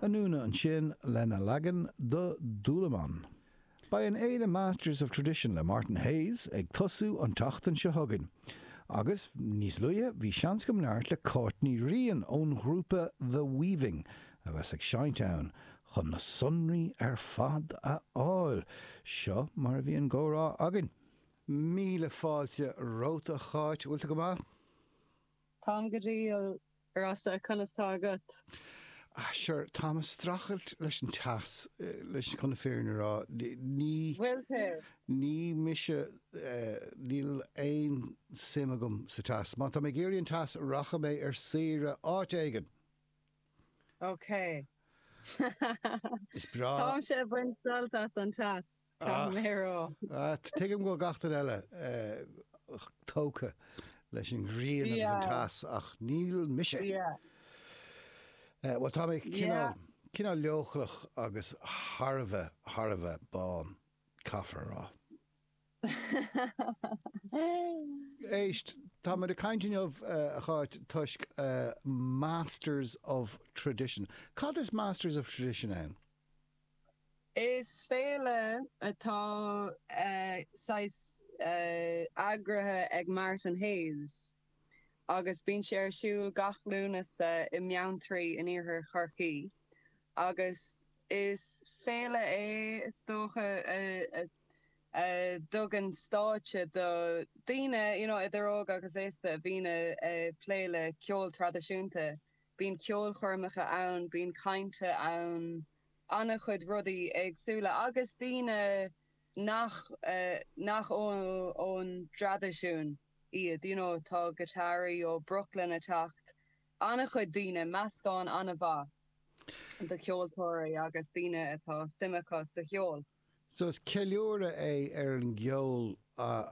Anúna ansin lena leagan do Dúlamán. Beidh an fhéile Masters of Tradition le Martin Hayes ag tosú an tseachtain seo chugainn. Agus, níos luaithe, bhí seans agam labhairt le Cáit Ní Riain ón ghrúpa The Weaving a bheas ag seinnt ann, chun na sonraí ar fad a fháil. Seo mar a bhí an gcomhrá againn. Míle fáilte romhat a Cháit, bhfuil tú go maith? Táim go diail, Rossa, conas tá agat? Ah, sure, táim ag strachailt leis an teas, leis, chun na fírinne a rá, ní, bhfuil tú? ní mise, níl aon suim agam sa teas. Má tá mé ag iarraidh an teas, rachaidh mé ar saoire áit éigin! Okay. Is breá. Táimse ag baint sult as an teas, caithfidh mé a rá. Tuigim go bhfuil gach duine eile tógtha leis an ghrian agus an teas ach níl mise. Bhuel tá mé cineál leochaileach agus thar a bheith, thar a bheith bán, caithfear a rá. Éist, táimid ag caint inniu, a Cháit, toisc Masters of Tradition. Cad is Masters of Tradition ann? Is féile atá saghas eagraithe ag Martin Hayes agus bíonn sé ar siúl gach Lúnasa i mBeanntraí in Iarthar Chorcaí agus is féile é is dócha a a thugann stáitse do dhaoine, you know, idir óg agus aosta a bhíonn ag plé le ceol traidisiúnta. Bíonn ceolchoirmeacha ann, bíonn cainteanna, an-chuid rudaí éagsúla agus daoine nach, nach ón dtraidisiún iad, you know, tá guitarraí ó Brooklyn ag teacht, an-chuid daoine, meascán an-mhaith de cheoltóirí agus daoine atá suim acu sa cheol. So is ceiliúradh é ar an gceol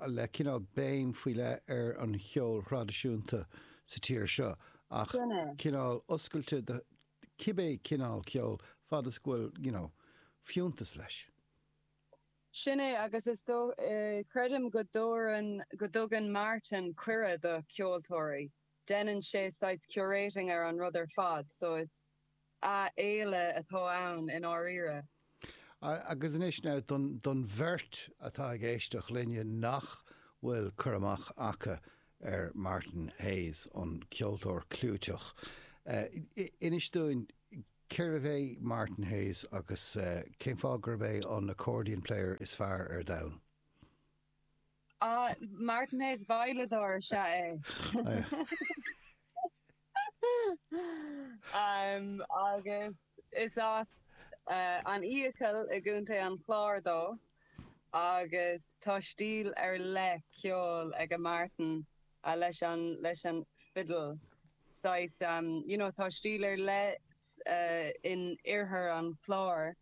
le cineál béim faoi leith ar an cheol thraidisiúnta sa tír seo ach cineál oscailte do cibé cineál ceol fad is go bhfuil you know fiúntas leis. Sin é agus is dóigh, creidim go dtugann Martin cuireadh do cheoltóirí. Deineann sé saghas curating ar an rud ar fad so is ea féile atá ann i ndáiríre. Agus anois now don bheirt atá ag éisteacht linne nach bhfuil cur amach aca ar Martin Hayes an ceoltóir clúiteach. Inis dúinn cérbh é Martin Hayes agus cén fáth gurb é an accordion player is fearr ar domhan? Ah, Martin Hayes veidhleadóir is ea é. Agus is as an bhFiacail i gContae an Chláir dó agus tá stíl ar leith ceoil ag Martin leis an leis an fiddle. Saghas you know tá stíl ar leith in oirthear an Chláir.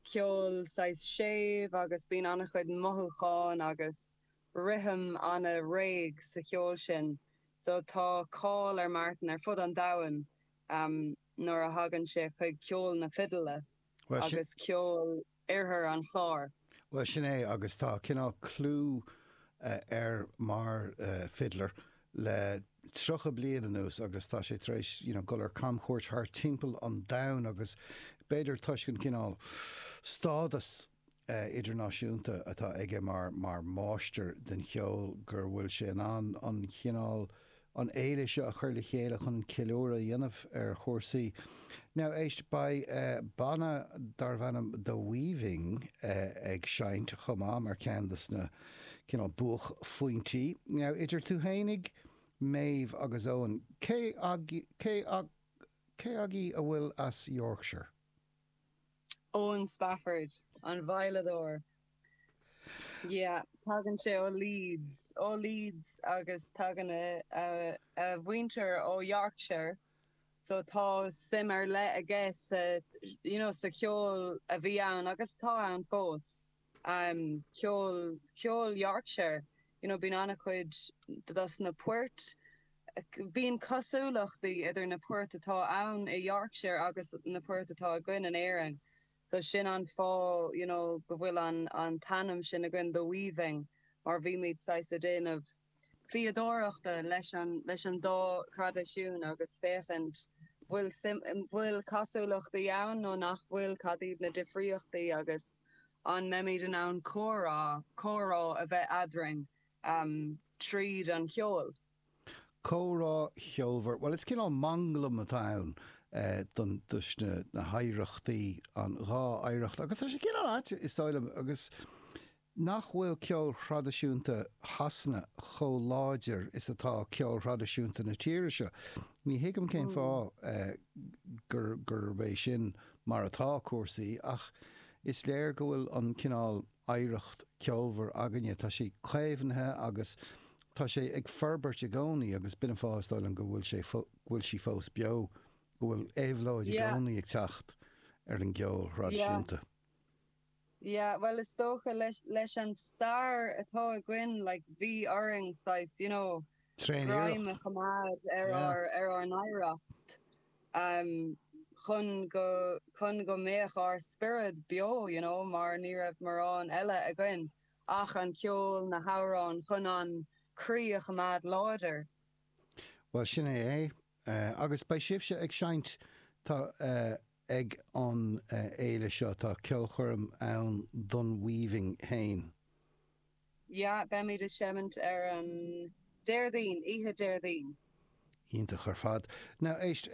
ceol saghas séimh agus bíonn an-chuid mothúcháin agus rithim an-réidh sa cheol sin so tá cáil ar Martin ar fud an domhain nuair a thagann sé chuig ceol na fidle agus ceol Oirthear an Chláir. Bhuel sin é agus tá cineál clú air mar fiddler le tríocha bliain anuas agus tá sé tar éis you know dul ar camchuairt thart timpeall an domhain agus b'fhéidir toisc an cineál stádas eh idirnáisiúnta atá aige mar mar mháistir den cheol gur bhfuil sé in ann an cineál an fhéile seo a chur le chéile chun ceiliúradh a dhéanamh ar chúrsaí. Now éist beidh eh banna darb ainm The Weaving eh ag seinnt chomh maith mar cheann dos na cineál buachphointí. Now idir tú fhéinig, Méabh agus Owen, cé cé agaí a bhfuil as Yorkshire? Owen Spafford, an veidhleadóir. Yeah, tagann sé ó Leeds, ó Leeds agus tagann a a mhuintir ó Yorkshire so tá suim ar leith aige sa you know sa cheol a bhí ann agus atá ann fós. am ceol, ceol Yorkshire, you know bíonn an-chuid dos na poirt, bíonn cosúlachtaí idir na poirt atá ann i Yorkshire agus na poirt atá againn in Éirinn so sin an fáth you know go bhfuil an an t-ainm sin againn, The Weaving, mar bhímid saghas ag déanamh. fíodóireachta leis an dá thraidisiún agus féachaint an bhfuil cosúlachtaí ann nó nach bhfuil, cad iad na difríochtaí agus an mbeimid in ann comhrá, comhrá a bheith eadrainn tríd an cheol. Comhrá cheolmhar. Bhuel, is cineál manglam atá ann do, dos na, na hoidhreachtaí, an dhá oidhreacht agus tá sé cineál ait, is dóigh liom, agus Nach bhfuil ceol traidisiúnta Shasana chomh láidir is atá ceol traidisiúnta na tíre seo? Ní thuigim cén fáth gurb é sin mar atá cúrsaí ach is léir go bhfuil an cineál oidhreacht ceolmhar againne, tá sé caomhnaithe agus tá sé ag forbairt i gcónaí agus b'in an fáth is dóigh liom go bhfuil sé, go bhfuil sí fós beo, go bhfuil éabhlóid i gcónaí ag teacht ar an gceol traidisiúnta. Yeah, bhuel, is dócha, leis, leis an stair atá againn, like, bhí orainn, saghas, you know, greim a choimeád ar ár, ar ár n-oidhreacht, em, chun go, chun go mbeadh ár spiorad beo, you know, mar ní raibh mórán eile againn ach an ceol, na hamhráin, chun an croí a choimeád láidir. Bhuel, sin é é. Agus beidh sibhse ag seinnt tá ag an fhéile seo, tá ceolchoirm ann don Weaving féin. Yeah, beimid ag seimint ar an Déardaoin, oíche Déardaoin. Iontach ar fad. Now éist,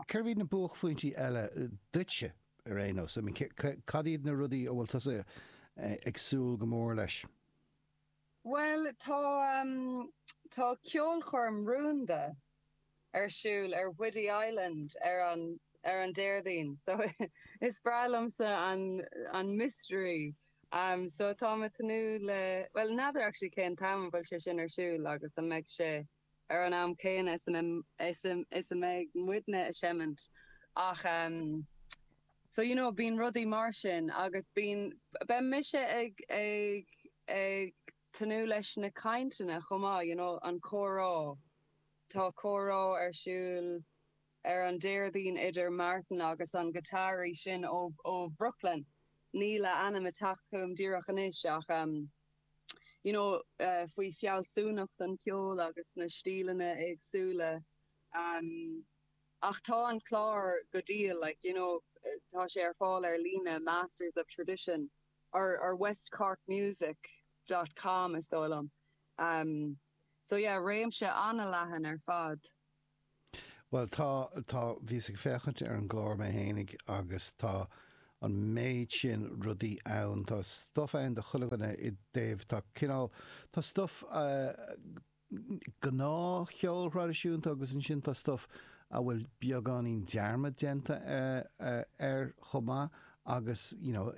cad iad na buaicphointí eile duitse ar aon nós? I mean, cad iad na rudaí a bhfuil tusa ag súil go mór leis? Bhuel, tá, tá ceolchoirm rúnda ar siúl ar Whiddy Island ar an, ar an Déardaoin so is breá liomsa an, an mystery. So tá mé ag tnúth le, bhuel n'fheadar actually cén t-am a bhfuil sé sin ar siúl agus an mbeidh sé. ar an am céanna is a mbeidh muidne a' seimint ach ehm so you know bíonn rudaí mar sin agus bíonn, beidh mise ag, ag, ag tnúth leis na cainteanna chomh maith you know an comhrá, tá comhrá ar siúl. ar an Déardaoin idir Martin agus an guitarist sin ó Brooklyn, níl a ainm ag teacht chugam díreach anois ach ehm. you know faoi fealsúnacht an cheoil agus na stíleanna éagsúla ehm. Ach tá an clár go diail like you know tá sé ar fáil ar líne Masters of Tradition or or West Cork Music dot com is dóigh liom ehm. So yeah réimse an-leathan ar fad. Bhuel tá, tá, bhíos ag féachaint ar an gclár mé fhéinig agus tá an méid sin rudaí ann, tá stuff ann do chuile dhuine i dtaobh, tá cineál, tá stuff gnáthcheol thraidisiúnta agus ansin tá stuff a bhfuil beagáinín dearmad déanta air chomh maith agus you know,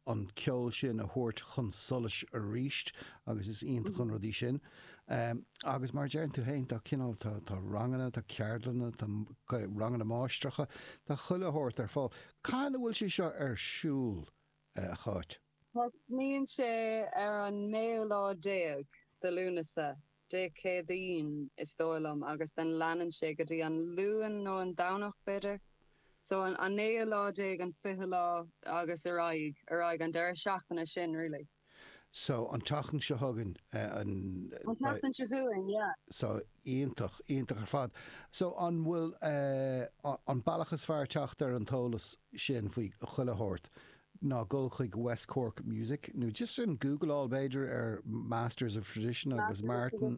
an ceol sin a thabhairt chun solais aríst agus is iontach an rud é sin. Agus mar a deireann tú féin tá cineál tá ranganna, tá ceardlanna, tá ranganna máistreacha, tá chuile shórt ar fáil. Cathain a bhfuil sé seo ar siúl, a Cháit? Tosnaíonn sé ar an naoú lá déag de Lúnasa Dé Céadaoin, is dóigh liom, agus ansin leanann sé go dtí an Luan nó an Domhnach, b'fhéidir. So an an naoú lá déag, an fichiú lá agus ar aghaidh, ar aghaidh, an deireadh seachtaine sin really. So an tseachtain seo chugainn, an. An tseachtain seo chugainn, yeah. So iontach, iontach ar fad. So an bhfuil an bealach is fearr teacht ar an t-eolas sin faoi chuile shórt ná dul chuig West Cork Music, nó just an Google-áil b'fhéidir ar Masters of Tradition agus Martin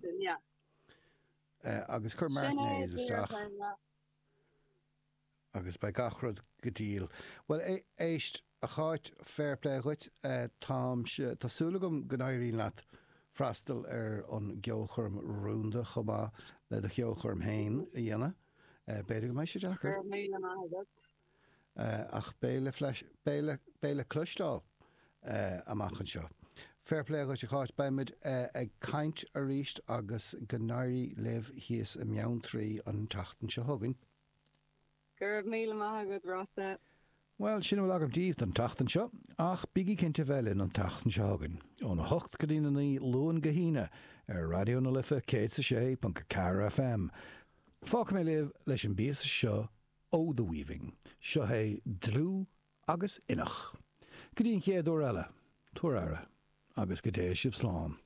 agus cuir Martin Hayes isteach agus beidh gach rud go diail. Bhuel, éist, a Cháit, fair play dhuit, táimse, tá súil agam go n-éiríonn leat freastal ar an gceolchoirm rúnda chomh maith le do cheolchoirm fhéin a dhéanamh. B'fhéidir go mbeidh sé deacair. Go raibh míle maith agat. Ach beidh le cloisteáil amach anseo. Fair play dhuit a Cháit, beimid ag caint arís agus go n-éirí libh thíos i mBeanntraí an tseachtain seo chugainn. Go raibh míle maith agat Rossa. Bhuel, sin a bhfuil agam díbh don tseachtain seo, ach bígí cinnte bheith linn an tseachtain seo chugainn, óna hocht go dtína naoi, Luan go hAoine, ar Raidió na Life 106.4 FM. Fágfaidh mé libh leis an bpíosa seo ó The Weaving. Seo é dlúth agus inneach. Go dtí an chéad uair eile, tabhair aire agus go dté sibh slán.